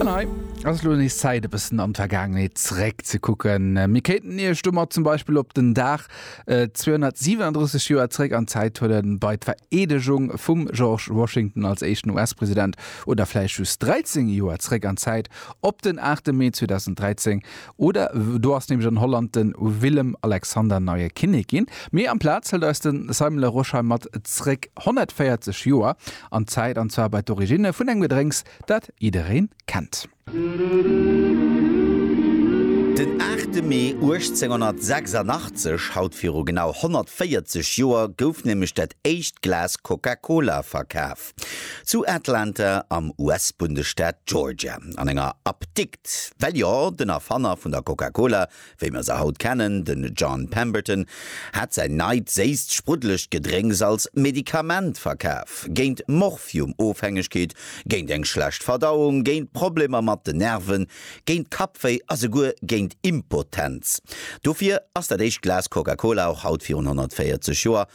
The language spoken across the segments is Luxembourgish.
An hei ass elo nees Zäit, e bëssen an d'Vergaangenheet zeréckzekucken. Mir kéinten Iech domat zum Beispill op den Dag 237 Joer zeréck an d'Zäit huelen, bei d'Vereedegung vum George Washington als éischten US-President, oder vläicht just 13 Joer zeréck an d'Zäit, op den 8 Mee 2013, oder do ass nämlech an Holland de Willem-Alexander neie Kinnek ginn. Mee amplaz hëlt eis de Simon Larosche hei mat zeréck 140 Joer an d'Zäit, an zwar bei d'Origine vun engem Gedrénks, dat jiddereen kennt. Den 8 Mee 1886, haut viru genau 140 Joer, gouf nämlech dat éischt Glas Coca-Cola verkaf. Zu Atlanta am US-Bundesstaat Georgia, an enger Apdikt. Well jo, den Erfanner vun der Coca-Cola, wéi mer se haut kennen, den John Pemberton hat säin neit séisst spruddelegt Gedrénks als Medikament verkaf, géint Morphium-Ofhängegkeet, géint eng schlecht Verdauung, géint Problemer mat den Nerven, géint Kappwéi a souguer géint Impotenz. Dofir ass dat éischt Glas Coca-Cola och haut virun 140 Joer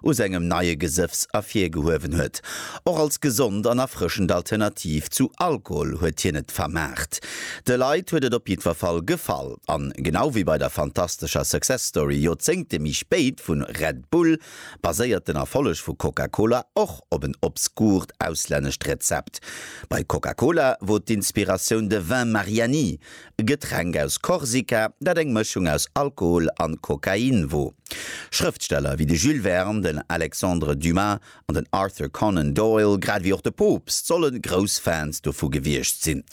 u sengem neie Gesëffs ervirgehuewen huet. Och als gesond an erfrëschend Alternativ zu Alkohol huet hien et vermaart. De Leit huet et op jiddwer Fall gefall. An genau wéi bei der fantastescher Success Story Joerzéngte méi spéit vun Red Bull, baséiert den Erfolleg vu Coca-Cola och op en obskurt auslännescht Rezept. Bei Coca-Cola wor d'Inspiratioun de Vin Mariani, e Getränk aus Korsika, dat eng Mëschung aus Alkohol an Kokain wor. Schrëftsteller wéi de Jules Verne, den Alexandre Dumas an den Arthur Conan Doyle, grad wéi och de Poopst, solle grouss Fans dovu gewiescht sinn.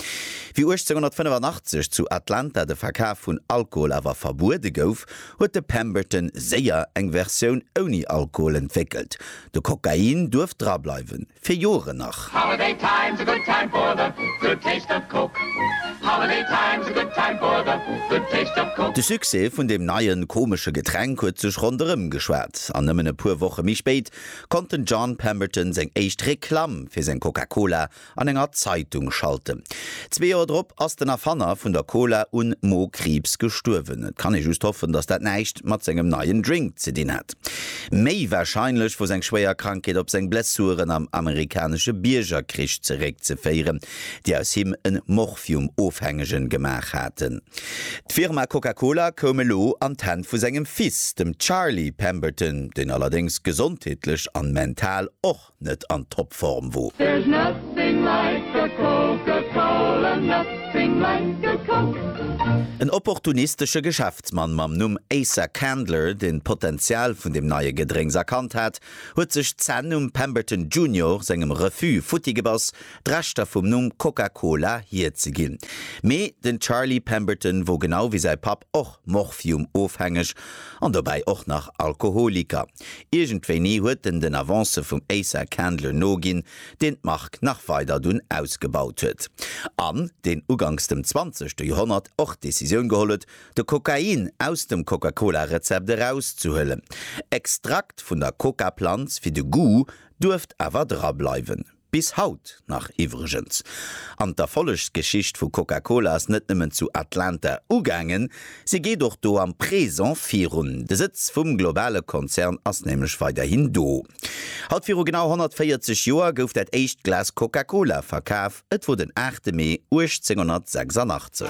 Wéi 1885 zu Atlanta de Verkaf vun Alkohol awer verbuede gouf, huet de Pemberton séier eng Versioun ouni Alkohol entwéckelt, de Kokain duerft drableiwen. fir Joeren nach. Holiday time's a good time for the good taste of Coke Holiday time's a good time for the good taste of Coke. De Succès vun deem neien, komesche Getränk huet sech ronderëm geschwat, an nëmmen e puer Woche méi spéit konnt den John Pemberton seng éischt Reklamm fir seng Coca-Cola an enger Zeitung schalten. Zwee Joer drop ass den Erfanner vun der Cola un Mo-Kriibs gestuerwen. Et kann ee just hoffen, datt dat näischt mat sengem neien Drink ze dinn hat. Méi warscheinlech wor seng schwéier Krankheet op seng Blessuren am amerikanesche Biergerkrich zeréckzeféieren, déi aus him en Morphium-Ofhängegen gemaach haten. D'Firma Coca-Cola koum elo an d'Hänn vu sengem Fils, dem Charlie Pemberton, deen allerdéngs gesondheetlech an mental och net an Topform wo. There's nothing like a Coca-Cola, nothing like a Coke. En opportunistesche Geschäftsmann mam Numm Asa Candler, deen d'Potenzial vun dem neie Gedrénks erkannt hat, huet sech d'Zänn um Pemberton Junior sengem Refus futti gebass, d'Rechter vum Numm Coca-Cola hierzeginn. Mee den Charlie Pemberton wor genau wéi säi Papp och Morphium-ofhängeg an dobäi och nach Alkoholiker. Iergendwéini huet en den Avancë vum Asa Candler noginn, deen d'Mark nach weider dunn ausgebaut huet, an deen uganks dem zwanzegte Joerhonnert och d'Decisioun geholl huet, de Kokain aus dem Coca-Cola-Rezept erauszehuelen. Extrakt vun der Coca-Planz fir de Goût duerft awer drableiwen. Bis haut nach iwwregens. An d'Erfollegsgeschicht vu Coca-Cola ass net nëmmen zu Atlanta ugaangen, si geet och do am Présent virun. De Sëtz vum globale Konzern ass nämlech weiderhin do. Haut viru genau 140 Joer gouf dat éischt Glas Coca-Cola verkaf, et wor den 8 Mee 1886.